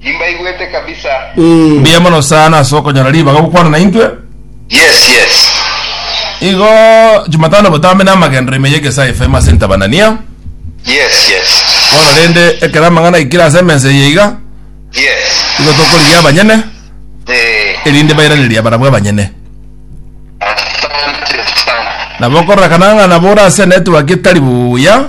Nimbaigwete kabisa. Ee. Mbuya mono sana ase okonyora ribaga gokwana naintwe. Yes, yes. Igo Jumatano botambe na amagenderero ime y'egesae FM ase Ntabanania. Yes, yes. Bono rende ekero amang'ana aikire ase emensa eye iga, Yes. igo tokorigia abanyene, Eh. erinde bairanerie abarabwo abanyene. Asante sana. Nabo okorora kanang'a nabo ore ase network etari buya,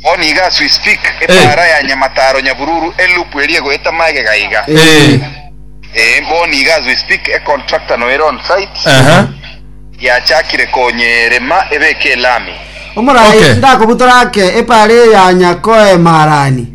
Bono iga as we speak epaara ya Nyamataro Nyabululu eloop eria egoeta magega iga. Ee bono iga as we speak econtractor noere on site yachakire konya erema ebeke elami. Omoraai, Okay. ngakobutora ake epaara eye ya Nyakoema Harani.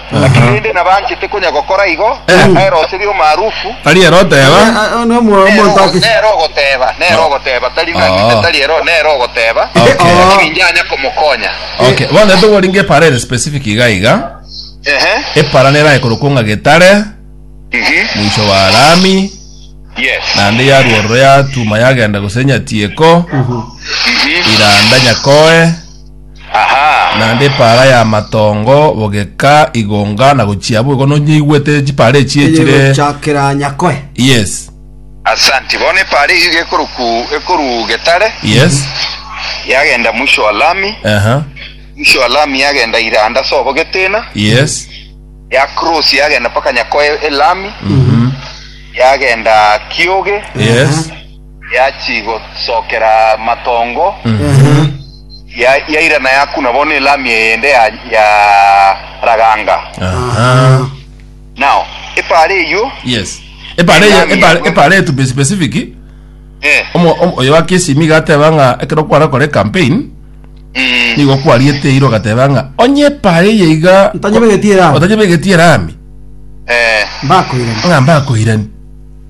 Naki rende nabanchete konya gokora igo, nere ose ri'omaarufu, Tari ere oteba. Oyo ne omo- nere omonto ogo- ake. nere ogoteba, nere ogoteba, tari naki Oh. inde, tari ero, nere ogoteba, Okay. naki Oh. ninjanya komokonya. Okay, bono togoringa epara ere specific iga iga. Ehe. Epara nerae korokwa ng'a getare, Mhm. mwisho wa lami, Yes. naende yarwa ororo yatuma yagenda gose nyatieko, Mhm. iranda nyakoe, Aha! Naende epaara y'amatongo bogeka igonga na gochia abwo igo nonyeigwete chipaara echi Eye echire gochakera Nyakoe. yes Asanti. Bono epaara eyio iga ekoroku ekoruu Getare, yes yagenda mwisho wa lami, aha mwisho wa lami yagenda Iranda ase obogete ina, yes ya cross yagenda mpaka Nyakoe elami, yagenda Kioge, yes Yachigosookera amatongo, yairana yakuna bono elami eyende ya raganga. Nao epaara eyio. Yes. Epaara eye, Elami epaara, yabwe. epaara eye to be specific, Eh, omo, omo, oyo wa KCM iga ateba ng'a ekero kwara kore campaign, mm, nigo kwariete eira ogateba ng'a onye epaara eye iga Ntanyebegetie erami. otanyebegetie erami eh. Mbakoirani. ng'a mbakoirani.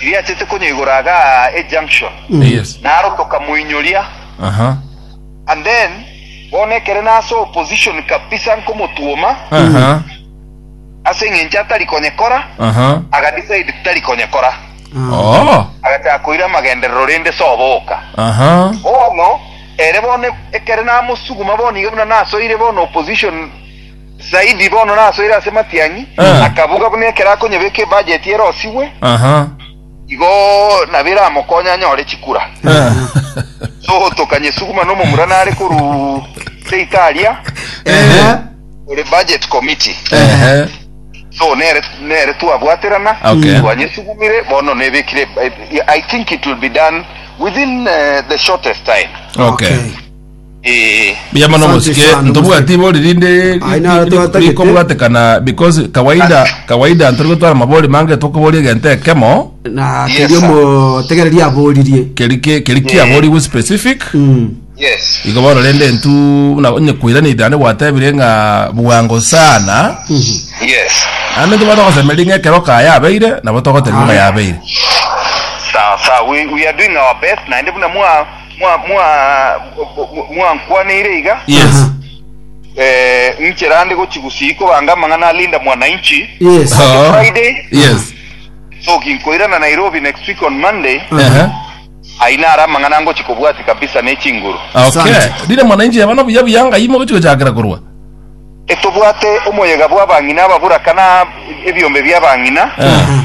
Riachete konyoigora iga aa ejunction Yes. naro tokamoinyoria Aha. and then bono ekere nase opposition kabisa nkomotuoma Aha. ase eng'encho atari konyekora Aha. agadecide tari konyekora Oh. agachaka koira amagenderero rende soboka Aha. bono ere bono ekere namosuguma bono iga buna nasoire bono opposition Zaidi bono nasoire ase matiang'i, Ah. akabuga buna ekero akonyebeka ebajeti erosigwe, Aha. igo nabo eramokonye anyore chikura. Ah. Sohoto Kanyesuguma nomomura nare korwa ase Italia, Ehe. ore budget committee. Ehe. So nere nere twabwaterana, Okay. twanyesugumire bono nebekire I think it will be done within eh, the shortest time. Okay. Okay. Ee. Buya mono Asante mosike sana, ntobwati bori rinde ri- Ai ri- naro ri- twatagete. rikobwatekana because kawaida kawaida ntori gotwara mabori mange tokoboria egento ekemo na Yes, keria sir. omotegereria aboririe keri ke- keri kiaborigwe specific Mm. Yes. igo bono rende ntu na- onye koirana itane gwatebire ng'a bwango sana Yes. ande ntu batogosemeria ng'a ekero kaya yabeire nabo togotebia ng'a yabeire Sawa sawa. We, we are doing our best naende buna mwa mwa- mwa- mwankwaneire iga Yes. Aha. eh, inchera ande gochi gusii kobanga amang'ana alinda mwananchi Yes. Oh. Friday. Yes. so ginkoirana nairobi next week on monday Ehe. aina ara amang'ana ngochi kobwati kabisa nechinguru Okay. Asante. Rire mwananchi yabana buya buya ngai mogochi gochakera korwa. etobwate omoyega bw'abang'ina ababuraka na ebiombe bi'abang'ina Eh. Aha.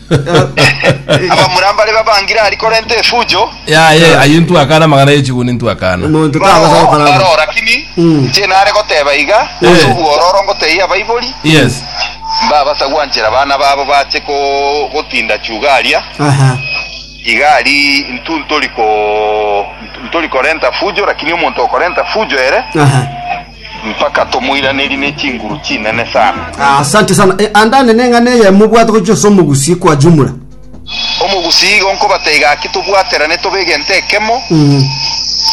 Abamura mbare babangire aria korenta efujo. Yaye, ayio ntwakana amagana ye chiguni ntwakana. Omonto Baroo takosa gokora aba. baroo rakini Mm. inche nare goteba iga Eh. ase obwororo ngotebia abaibori Yes. mbabasa gwanchera abana babo bache ko- gotinda chuga aria Aha. iga ari intu ntori ko ntori korenta fujo rakini omonto okorenta fujo ere Aha. Mpaka tomoiranerie ne chinguru chinene sana. Asante sana. Eh, andande neng'ana eye mobwate gochia ase omogusii kwa jumla. Omogusii igo nkobate gaki tobwaterane tobe egento ekemo,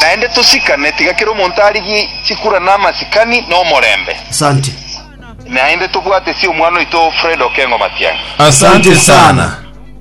naende tosikane, tiga kera omonto arigie chikura na amasikani na omorembe. Asante. Naende tobwatesie omwana oito Fred Okengo Matiang'i. Asante sana.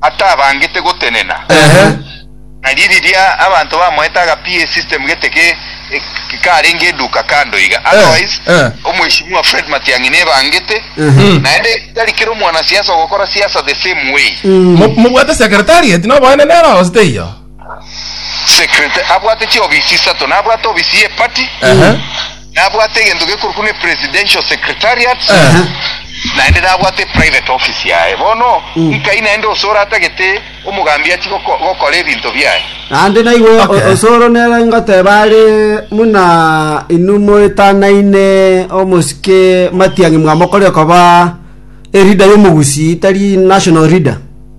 atabangete gotenena. Na riria abanto bamoete agapia esystem gete ke karenge eduka kando iga. Otherwise, Omweshimiwa Fred Matiang'i nebangete, naende tari kera omwanasiasa ogokora siasa the same way. Mobwate secretariat noboenene ere oo, gose teiyo? secretary abwate chiofisi isato nabwate ofisi ye party Ehe. nabwate egento gekorokwa ne presidential secretariat Ehe. naende nabwate private office yaye bono nkai naende osore atagete omogambi achi goko- gokora ebinto biaye Naende naigo o- Okay. osoro nere ngoteba are muna inwe moetanaine omosike matiang'i mwamokorire koba erida y'omogusi tari national reader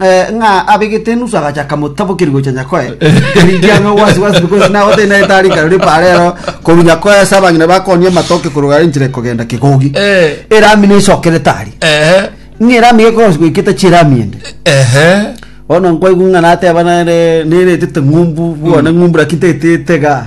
Eh, ng'a abegete enusu agacha akamotabokeria gocha nyakoe eriki ame ogwasiwasi because nabo tari naye tari karori parero koru nyakoe ase abang'ina bakonia amatoke korogara enchera ekogenda kigogi Eh. erami nesokere tari Ehe. ng'a erami gekosi goiketa chirami ende Ehe. bono nkwaigu ng'a nateba nere neretete ng'umbu bwane ng'umbu lakini tetete ga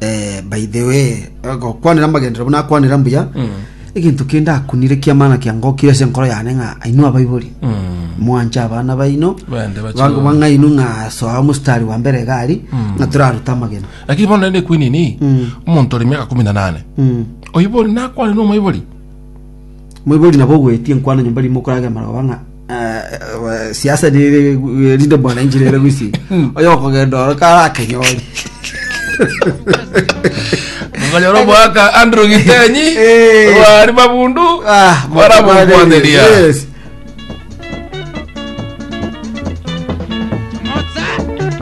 Eh, by the way gokwanera amagenderero buna akwanera mbuya egento kende akunire kiamana kiangokire ase enkoro yane ng'a ainwe abaibori mwanche abana baino Bende bache bango bana. bang'ainu ng'a soa mostari wa mbere egari ng'a toraruta amagena lakini bono nende kwinini omonto ore miaka kumi na nane oibori nakwane na omoibori Moibori nabo ogwetie nkwano nyomba rimo okorage amaroba ng'a siasa nere erinde mwananchi nere gwisinga oyo okogenda oro karakenyori Okonyora omwaka Andrew Gitenyi Eh. bari mabundu Ah, baramokwaneria Yes.